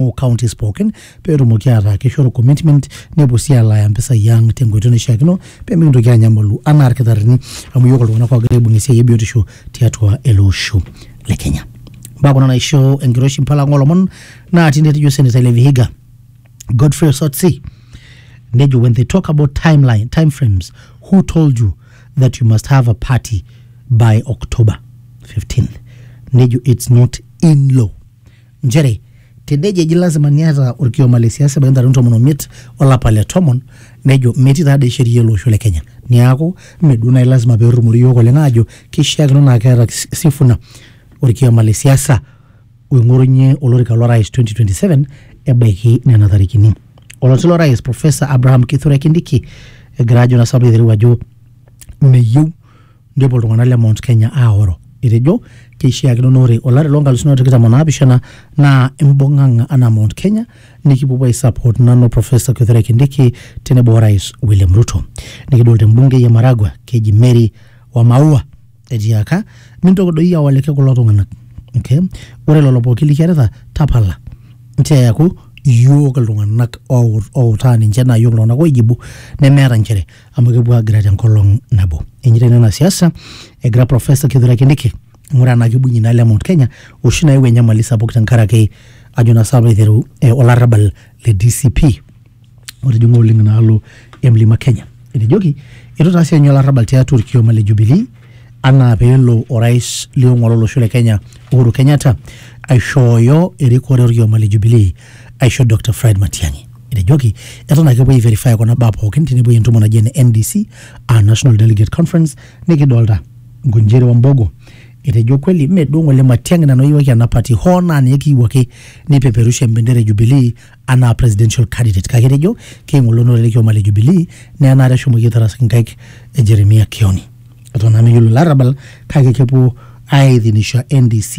o counties pookin peetumoki ataa kishoru commitment nepuo sii alaaya mpisai ang tenkoitoi naishiakino pemikintoki anyamalu anaa irkitarrini amu yiok iltung'anak ogira aibung esiai e biotisho tiatua ele osho le Kenya. Mbaa kuna naisho enkiroshi mpala ang olomon naa tine etejo senator le Vihiga Godfrey Osotsi nejo when they talk about timeline time frames who told you that you must have a party by october 15th nejo it's not in law nchere tenejo eji lasima niata orkioma le siasa ebaiki ntarikini tomon omiet olapa le tomon nejo metii taa dei sheria ele osho le Kenya niaku mme duo naaji lasima pee irrumori iyiook oleng aajo kishiakino naa keeta Sifuna orkioma le siasa oing'orunyie olorika lo rais 2027 ebaiki nena tarikini. Oloti lo rais professor Abraham Kithure Kindiki egira ajo naa sababu aitereu ajo meyieu Nepuo iltung'anak le Mount Kenya aoro etejo keishiakino naa ore olari loo nkalusuni are o tikitam o naapishana naa imbung'ang'a anaa Mount Kenya nikipuopuo aisupport nanu Professor Kithure Kindiki tenebo Orais William Ruto. Nikidol te mbungei e Maragua keji Mary Wamaua etiaka mintoki doi awaliki kulo tung'anak. Okay? Ore lelo pooki likiarita tapala nchoo eaku iyiook iltung'anak outaa ninche naa iyiook iltung'anak oijibu nemeeta nchere amu kepuo agira tenkolong nabo. Enyeita ina ena siasa egira Profesa Kithure Kindiki aing'uraa enaa kibung'ie ina le Mount Kenya oshi nayau enyamali sapuk tenkaraki ajo naa saapa aiteru eh, olarrabal le DCP otijing'a oleng inaalo e Mlima Kenya. Etejoki eitu itaasi enye olarrabal tiatua orkioma le Jubilee anaa peelo orais liong'uan lolosho le Kenya Uhuru Kenyatta aishooyo erikore orkioma le Jubilee aisho Dr Fred Matiang'i. Etejoki eton ake epuoi aiverify kuna baa pookin tenepuoi entumo naji ene NDC aa National Delegate Conference nikidolta Ngunjiri o Mbogo. Etejo kweli mme duo ng'ole Matiang'i nanu ayiewaki ena party hoo naa ninye kiiwuo ake nipeperusha embendera e Jubilee anaa presidential candidate kake etejo keing'olonore ele kioma le Jubilee naa enaata eshomoki aitaras inkaik e Jeremia Kioni. Eton naa meyiolo ilo arabal kake kepuo aithinisha NDC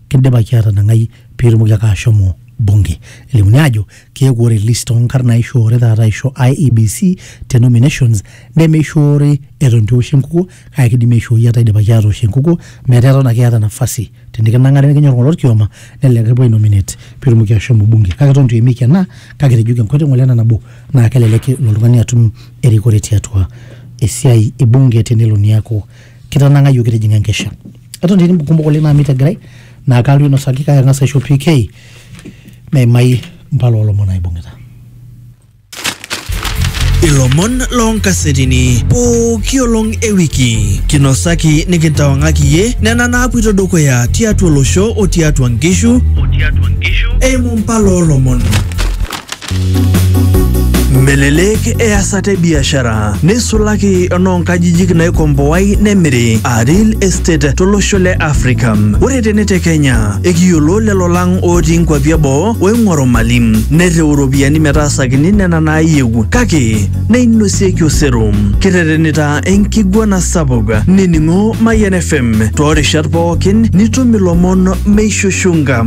Kidipaki atanang'ai pitumoki ake ashomo bunge. Elimuni ajo keeku ore list onkarn naishoore taata aisho IEBC te nominations nemeishoori eton itu eoshi enkukuo kake kidimi aishooi etaa idipaki atoosh enkukuo metaa eton ake iyata nafasi tenikinang'ari nikinyor ng'ole orkioma nelelek kipuo ai nominate pitumoki ashomo bunge kake eton itu eimieki ena kake etejoki enkoitoi ng'ole ena nabo naa kelelek elo oltung'ani atum erikore tiatua esiai e bunge tenelo niaku kitanang'ayioki itijing'a enkesha eton etii kumok oleng naamit egirai naa kaalotu ainosaki kake ang'as aisho PK meimai impala oolomon naibung'ita. Ilomon loonkasetini pooki olong e wiki kinosaki nikintawang'aki iyie nena naapuito dukuya tiatua olosho o tiatua nkishu eimu impala oolomon. Melelek easata e biashara neisulaki enoonkajijik naikomboai nemiri aa real estate tolosho le Afrika. Ore tene te Kenya ekiyiolo lelo lang otii nkuapi eboo oing'oru mali nereu iropiyiani metaasakini nena naayieu kake neinosieki osero. Kiterenita enkiguana sapuk nining'o Mayian FM toorishat pookin nitum ilomon meishushunga.